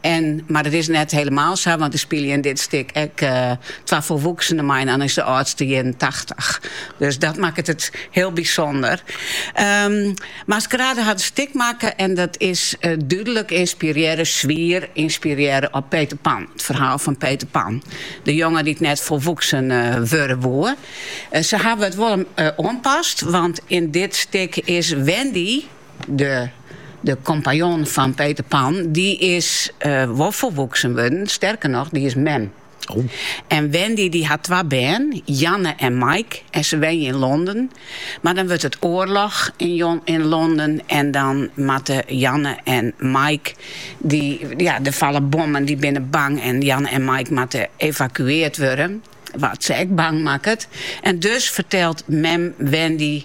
En, mar dat is net helemaal sa, want der spylje yn dit stik ek eh, twa folwoeksenen mei en dan is de âldste ienentachtich. Dus dat makket it heel bysonder. Ehm, Maskerade hat in stik makke en dat is eh, dúdlik inspirearre, swier inspirearre op Peter Pan. It ferhaal fan Peter Pan. De jonge dy't net folwoeksen eh wurde woe. Eh, se hawwe it wol eh, oanpast, want yn dit stik is Wendy De de kompanjon fan Peter Pan, dy is uh, wol folwoeksen wurden. Sterker noch, dy is mem. Oh. En Wendy dy hat twa bern, Janne en Mike. En se wenje yn Londen. Mar dan wurdt it oarloch yn, yn Londen. En dan moatte Janne en Mike. Dy, ja, der falle bommen, dy binne bang. En Janne en Mike moatte evakueard wurde. Wat se ek bang makket. En dus fertelt mem Wendy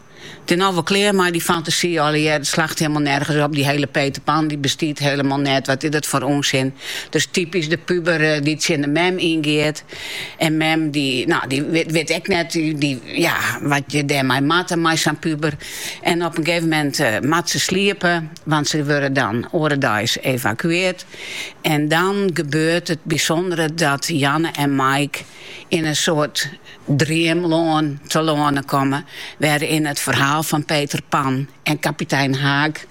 It is no wol klear mei dy fantasy allegearre. It slacht helemaal nergens op. Dy hiele Peter Pan dy bestiet helemaal net. Wat is dat foar ûnsin. It is typysk de puber dy't tsjin de mem yn giet. En mem dy no dy wit ek net tja wat je dêrmei moatte mei sa'n puber. En op in gegeven moment moat se sliepe want se wurde dan oare deis evakueard. En dan gebeurt it bysûndere dat Janne en Mike yn in soart Dreamlân telâne komme, wêryn't it ferhaal fan Peter Pan en kapitein Haak,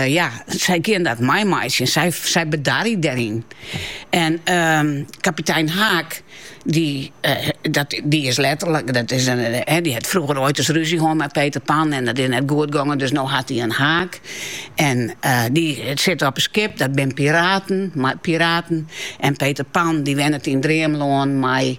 ja, sy gean dat meimeitsjen, sy sy bedarje dêryn. En kapitein Haak, dy dat dy is letterlik, dat is in, hè, dy hat frûger oait ris rúzje hân mei Peter Pan en dat is net goed gongen, dus no hat hy in haak. En dy sit op in skip, dat bin piraten, mei piraten, en Peter Pan dy wennet yn Dreamlân mei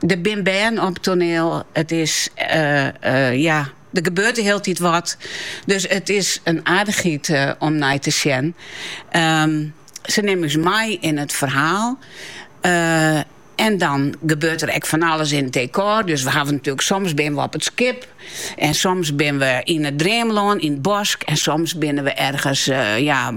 Der bin bern op it toaneel. It is ja, der gebeurt de hiele tiid wat. Dus it is in aardichheid om nei te sjen. Ehm, se nimme ús mei yn it ferhaal. En dan gebeurt der ek fan alles yn it dekôr. Dus we hawwe natoerlik soms binne we op it skip. En soms binne we yn it dreamlân, yn it bosk, en soms binne we ergens ja,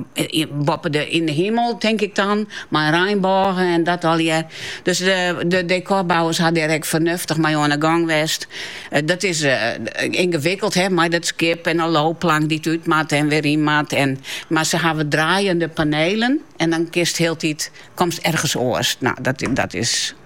boppe de, yn de himel, tink ik dan, mei reinbôgen en dat allegear. Dus de, de dekôrbouwers ha dêr ek fernuftich mei oan de gang west. Eh, dat is eh, ingewikkeld, hè, mei dat skip en de loopplank dy't út moat en weer yn moat. En, mar se hawwe draaiende panelen en dan kist hieltyd, komst ergens oars. Nou, dat, dat is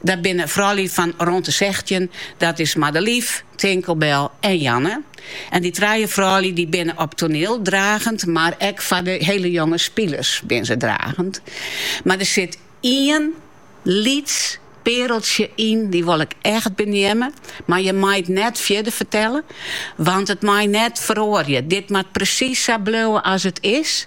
Dat binne froulju fan rûn de sechstjin, dat is Madelief, Tinkelbel en Janne. En dy trije froulju dy binne op toaniel dragend, mar ek foar de hiele jonge spilers binne se dragend. Mar der sit ien lyts peareltsje yn, dy wol ik echt beneamme, mar je mei it net fierder fertelle, want it mei net feroarje. Dit moat presys sa bliuwe as it is.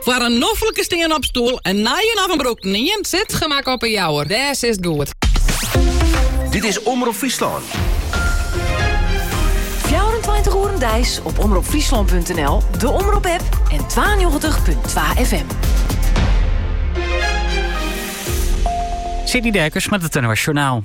Foar in noflike stean-op- stoel, in nije of in brûkten ien, Sitgemak op 'e Jouwer. Dêr is goed. Dit is Omrop Fryslân. 24 oeren deis op omropfryslan.nl, de Omrop app en 92.2 FM. City Dijkers met het Internationaal.